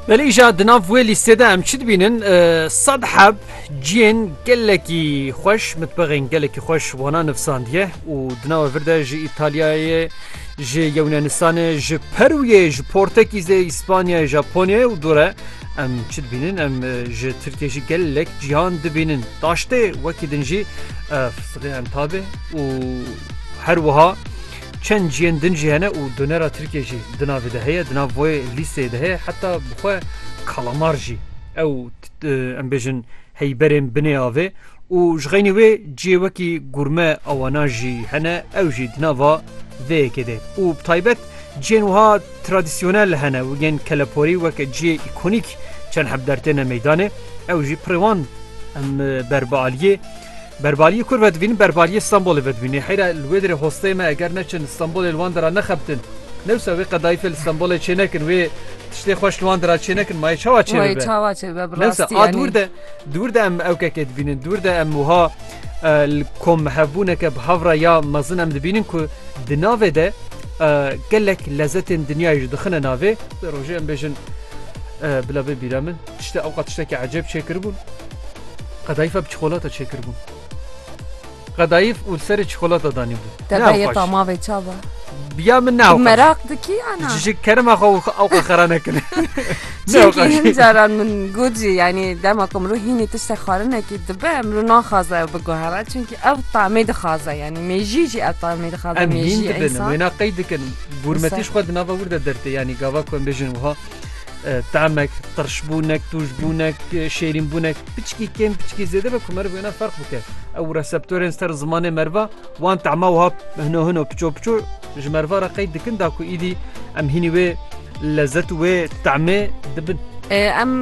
Belê îja di nav wê lîstê de em çi dibînin sed heb ciyên gelekî xweş mitbexên gelekî xweş wana nivsandiye û di nava vir de ji Îtalyayê ji Yewnanistanê ji Perûyê ji Portekîzê Îspanyayê Japonyayê û dore em çi dibînin em ji Tirkiye jî gelek cihan dibînin daştê wekî din jî em tabê û her wiha Çend ciyên din jî hene û donera Tirkiyê jî di navê de heye, di nav vê lîsteyê de heye heta bi xwe kalamar jî. Ew em bêjin heyberên binê avê û ji xeynî wê ciyê wekî gurme awana jî hene ew jî di nava vê yekê de û bi taybet ciyên wiha tradîsyonel hene û yên keleporî wek ciyê îkonîk çend heb dertêne meydanê ew jî pirê wan em ber bi aliyê Berbariyê kur vedivînin berbariyê Stenbolê vedivînê. Heyra li wê derê hosteyê me eger neçin Stenbolê li wan dera nexebitin. Newsa wê qedaîfê li Stenbolê çênekin wê tiştê xweş li wan dera çênekin mayê çawa çê bibe. Çawa çê bibe bi rastî. Newsa a dûr de dûr de em ewkekê dibînin dûr de em wiha li kom mihevbûneke bi hev re ya mezin em dibînin ku di navê de gelek lezetên dinyayê ji dixine navê. Di rojê em bêjin bila bê bîra min. Tişte ewqat tiştekî ecêb çêkiribûn, qedayîfa bi çikolata çêkiribûn. Qedayîf û li serê çikolata danîbû. Te bê yê tamavê ça be. Ya min ne. Meraq dikî ya na. Ji kerema xwe û ewqa xera nekine. Çimkî hin caran min got jî yanî dema ku mirov hînî tişte xwarinekî dibe mirov naxwaze ew biguhere çimkî ew tamê dixwaze yanî mêjî jî ew tamê dixwaze. Em hîn dibin wêna qey dikin gûrmetî ji xwe di nava wir de dertê yanî gava ku em bêjin wiha تاmek, qirşbûnek, tûjbûnek, şêrînbûnek piçkî kêm piçkî zêde ve ku meriv wêna ferq bike. Ew reseptorên ser zimanê meriva wan tema wiha hino hino piço piço ji meriva re qeyd dikin da ku îdî em hînî wê lezzet û wê temê dibin. Em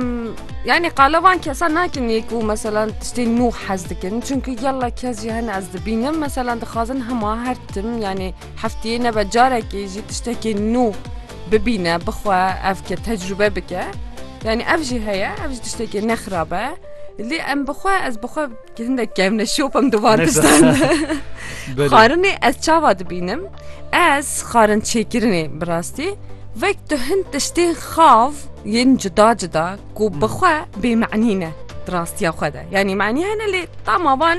yani qala wan kesa nakin yê ku mesela tiştê nû hez dikin çünkü yalla kes jî hene ez dibînim mesela dixwazin hema her tim yani heftiyê nebe carekê jî tiştekê nû Bibîne, bixwe, ev ke tecrube bike. Yanî ev jî heye, ev jî tiştekê ne xirab e. Lê em bixwe ez bixwe hindek kevne şop em divar distan. Xarinê ez çava dibînim. Ez xarin çêkirinê bi rastî. Vek tu hin tiştên xav yên cuda cuda ku bixwe bêmenî ne di rastiya xwe de. Yanî menî hene lê tama van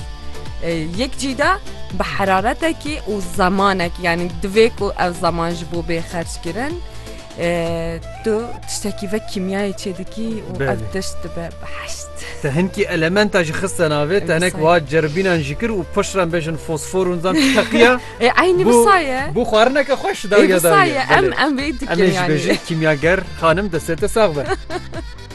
Yek cîda bi heraretekî û zemanekî yanî divê ku ev zeman ji bo bê xerc kirin tu tiştekî ve kîmyayê çê dikî û ev tişt dibe bi heşt. Te hinkî elementa jî xiste navê te hinek wa ceribînan jî kir û pişran bêjin fosfor û zan teqiya ê eynî bisaye bû xwarineke xweş daye daye em em vê dikin kîmyager xanim destê te sax be.